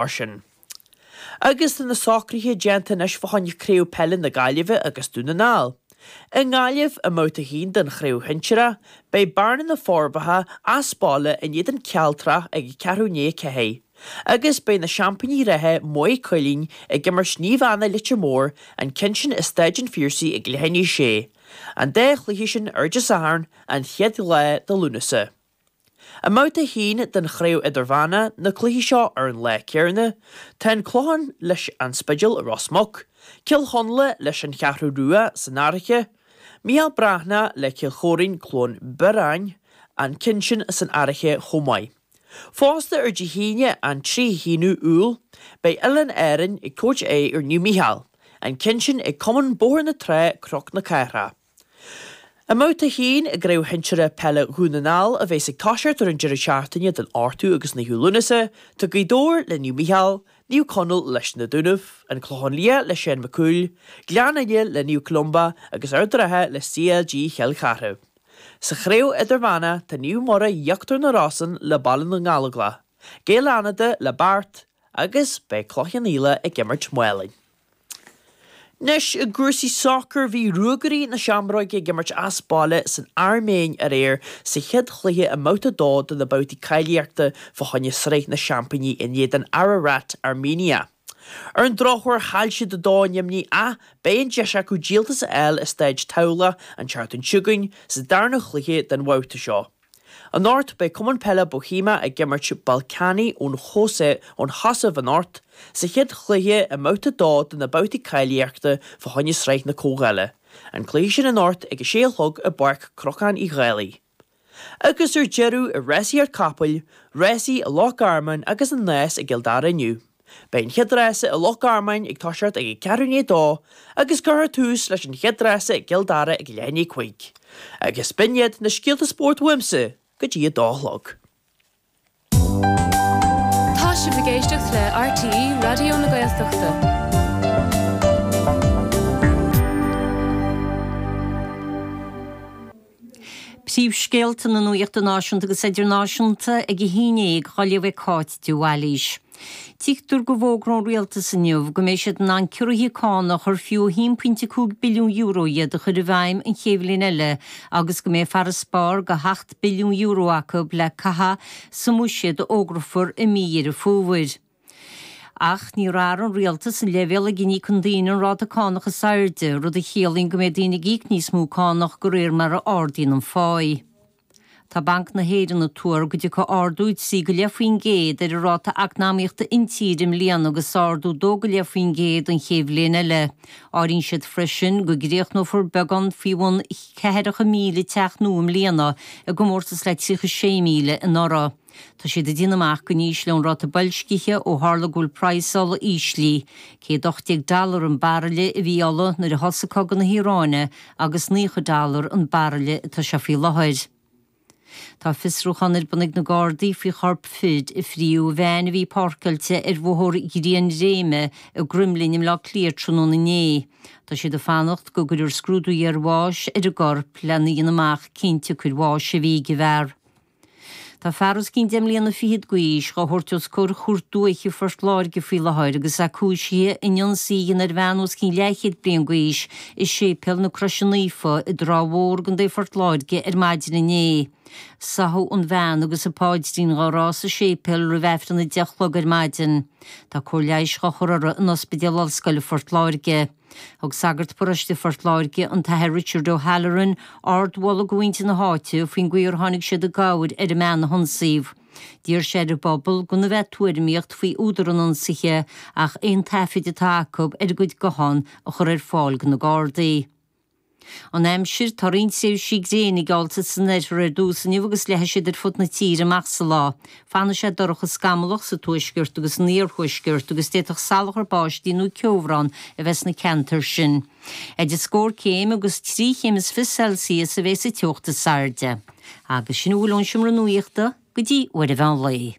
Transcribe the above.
Mar sin, agus tá na socruithe déanta anois fá choinne Craobh Peile na Gaillimhe agus Dún na nGall i nGaillimh i mBabhta 1 den Chraobh Shinsearach, beidh Bearna na Forbacha as baile in éadan Cealtrach ag ceathrú i ndiaidh a ceathair agus beidh na seaimpíní reatha Maigh Cuilinn ag imirt Naomh Anna Leitir Móir an ceann sin i Staid an Phiarsaigh ag leath i ndiaidh a sé an dá chluiche sin ar Dé Sathairn an chéad lá de Lúnasa. I mbabhta 1 den Chraobh Idirmheánach na cluichí seo ar an lá céanna, tá an Clochán leis An Spidéal i Ros Muc, Cill Chonla leis An Cheathrú Rua san Fhairche, Mícheál Breathnach le Cill Choirín Cluain Bheirn, an ceann sin san Fhairche chomh maith. Fosta ar Dé hAoine an 31ú Iúil, beidh Oileáin Árainn ag tabhairt aghaidh ar Naomh Mícheál, an ceann sin ag Cumann Bóthar na Trá Cnoc na Cathrach. I mbabhta 1 i gCraobh Shinsearach Peile Dhún na nGall, a bheas ag toiseacht ar an deireadh seachtaine den 8ú agus 9ú Lúnasa, tá Gaoth Dobhair le Naomh Mícheál, Naomh Conaill leis na Dúnaibh, An Clochán Liath le Seán Mac Cumhaill, Gleann Fhinne le Naomh Columba agus Ard an Rátha le CLG Chill Charthaigh. Sa Chraobh Idirmheánach, tá Naomh Muire Íochtar na Rosann le Baile na nGallóglach, Gaeil Fhánada le Beart agus beidh Cloich Cheann Fhaola ag imirt Málainn. Anois, i gcúrsaí sacair, bhí Ruagairí na Seamróige ag imirt as baile san Airméin aréir sa chéad chluiche i mBabhta 2 de na babhtaí cáilíochta fá choinne Sraith na Seaimpíní in éadan Ararat Armenia. Ar an drochuair, chaill siad 2 a neamhní ach beidh an deis acu díoltas a fháil i Staid Tamhlacht an tseachtain seo chugainn sa darna chluiche den bhabhta seo. Anocht, beidh Cumann Peile Bóithéimeach ag imirt Ballkani ón Chosa ón Chosaiv anocht, sa chéad chluiche i mBabhta 2 de na babhtaí cáilíochta fá choinne Sraith na Comhdhála, an cluiche sin anocht ag a sé a chlog i bPáirc Cnocáin Uí Dhálaigh. Agus ar deireadh, i rásaíocht capall, rásaí i Loch Garman agus an Nás i gCill Dara inniu. Beidh an chéad rása i Loch Garmáin ag toiseacht ag a ceathrú i ndiaidh a dó agus cuirfear tús leis an chéad rása i gCill Dara ag leath i ndiaidh a cúig. Agus b'in iad na scéalta spóirt uaimse go dtí a dó a chlog. Tá sibh ag éisteacht le RTÉ Raidió na Gaeltachta. Príomhscéalta na nuachta náisiúnta agus idirnáisiúnta ag a haon déag, dhá léamh ag Cáit de Bhailís. Tuigtear go bhfógróidh an Rialtas inniu go mbeidh siad in ann ciorruithe cánach ar fiú €1.5 billiún iad a chur i bhfeidhm an chéad bhliain eile agus go mbeidh farasbarr de €7 billiún acu le caitheamh sa mbuiséad a fhógrafar i mí Dheireadh Fómhair. Ach níor athraigh an rialtas an leibhéal ag a n-íocann daoine an ráta cánach is airde, rud a chiallaíonn go mbeidh daoine ag íoc níos mó cánach de réir mar a ardaíonn an pháí. Tá Banc na hÉireann ag tuar go dtiocfaidh ardú trí go leith faoin gcéad ar an ráta eacnamaíochta intíre i mbliana agus ardú dó go leith faoin gcéad an chéad bhliain eile. Áiríonn siad freisin go gcríochnófar beagán faoi bhun ceathracha míle teach nua i mbliana, i gcomórtas le 36,000 anuraidh. Tá siad ag déanamh amach go n-ísleoidh an ráta boilscithe ó tharla go bhfuil praghas ola íslithe. 118 dollar an baraille a bhí ola nuair a thosaigh cogadh na hIaráine agus 90 dollar an baraille atá sé faoi láthair. Tá fiosrúchán ar bun ag na Gardaí faoi chorp fir a fríodh i veain a bhí páirceáilte ar bhóthar Ghrianréime i gCromghlinn i mBleá Cliath tráthnóna inné. Tá siad ag fanacht go gcuirfear scrúdú iarbháis ar an gcorp lena dhéanamh amach cén tsiocair bháis a bhí ag an bhfear. Tá fear os cionn deich mbliana fichead d'aois dhá thabhairt os comhair Chúirt Dúiche Phort Láirge faoi láthair agus é cúisithe in ionsaí a dhéanamh ar bhean os cionn leathchéad bliain d'aois i Séipéal na Croise Naofa i dTrá Mhór, i gContae Phort Láirge ar maidin inné. Sáthadh an bhean agus an paidrín dhá rá sa séipéal roimh Aifreann a deich a chlog ar maidin. Tá cóir leighis dhá chur uirthi in Ospidéal Ollscoile Phort Láirge. Thug sagart paróiste Phort Láirge, an tAthair Richard O'Halloran, ardmholadh do mhuintir na háite faoin gcaoi ar tháinig siad i gcabhair ar an mbean a hionsaíodh. D'iarr sé ar an bpobal gan a bheith ag tuairimíocht faoi údar an ionsaithe ach aon taifid atá acu ar a gcuid guthán a chur ar fáil do na Gardaí. An Aimsir, Tá roinnt tréimhsí gréine geallta san oirthear ar dtús inniu agus leathfaidh siad ar fud na tíre amach sa lá. Fanfaidh sé dorcha scamallach sa tuaisceart agus san iarthuaisceart agus d'fhéadfadh salachar báistí nó ceobhrán a bheith sna ceantair sin. Idir scór céim agus trí chéim is fiche Celsius a bheidh sa teocht is airde. Agus sin a bhfuil ón Seomra Nuachta go dtí uair an mheán lae.